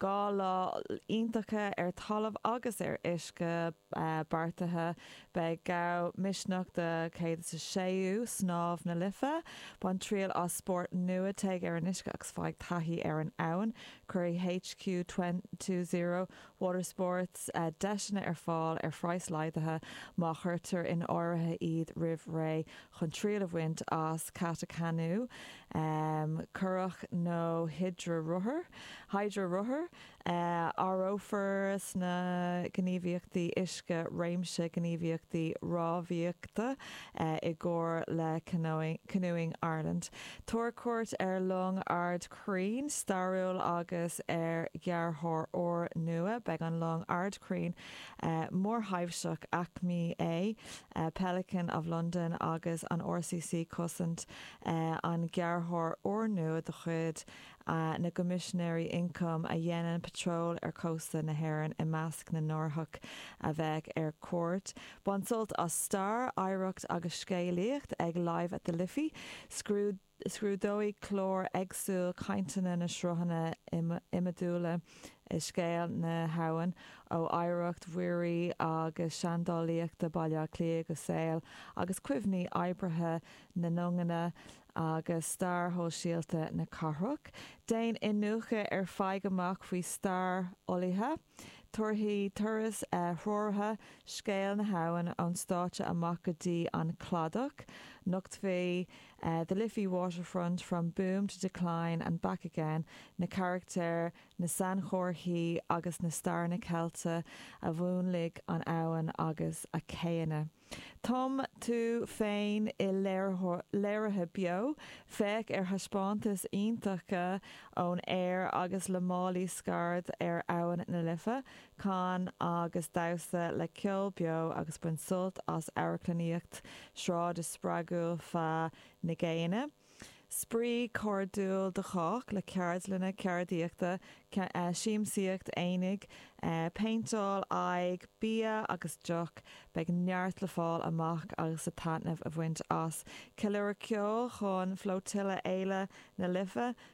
Dhá lá iontach ar talamh agus ar uisce beartaithe. Beidh gá le misneach don 106ú snámh na Life. Bain triail as spórt nua, téigh ar an uisce agus faigh taithí ar an abhainn. Cuirfidh HQ Two Zero Watersports deiseanna ar fáil ar phraghas laghdaithe má chuirtear in áirithe iad roimh ré chun triail a bhaint as cadhc, canú. curach nó hidrearothar, hydrorothar, Áireofar sna gníomhaíochtaí uisce réimse gníomhaíochtaí rámhaíochta i gcomhar le Canoeing Ireland. Tabhair cuairt ar long ardchrann stairiúil agus ar ghearrthóir úrnua. Beidh an long ardchrann mhórthaibhseach aicme A, Pelican of London agus an RCC Cosaint an gearrthóir úrnua de chuid na gCoimisinéirí Ioncaim a dhéanann patról ar chósta na hÉireann i measc na n-árthach a bheidh ar cuairt. Bain sult as stair, oidhreacht agus scéalaíocht ag Live at the Liffey. Scrúdóidh clár éagsúil cainteanna na sruthanna iomadúla i scéal na habhann, ó oidhreacht mhuirí agus seandálaíochta Bhaile Átha Cliath go saol agus cuimhní oibrithe na nduganna agus stair shóisialta na cathrach. Déan iniúchadh ar Faigh amach faoi stair fholaithe. Tabharfaidh turais threoraithe scéal na habhann ón stáitse amach go dtí an cladach. Nochtfaidh The Liffey Waterfront, From Boom to Decline and Back Again na carachtair, na sainchomharthaí agus na staireanna ceilte a mhúnlaigh an abhainn agus a céanna. Tum tú féin i léirithe beo, féach ar thaispeántais iontacha ón aer agus le málaí scaird ar Abhainn na Life, can agus damhsa le ceol beo agus bain sult as amharclannaíocht sráide spreagúil feadh na gCéanna. Spraoi cairdiúil do chách, le ceardlanna ceardaíochta, siamsaíocht aonaigh, péinteáil aghaidhe, bia agus deoch. Beidh neart le fáil amach agus le taitneamh a bhaint as. Ceiliúradh ceoil chun Flotilla Fhéile na Life,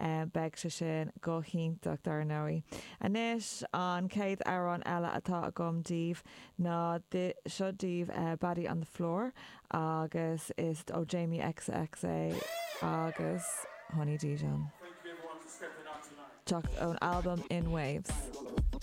Beidh sé sin go hiontach, dar ndóigh. Anois, an chéad amhrán eile atá agam daoibh ná seo daoibh, Baddie on the Floor, agus is ó Jamie xx é agus Honey Dijon. Teacht ón albam In Waves.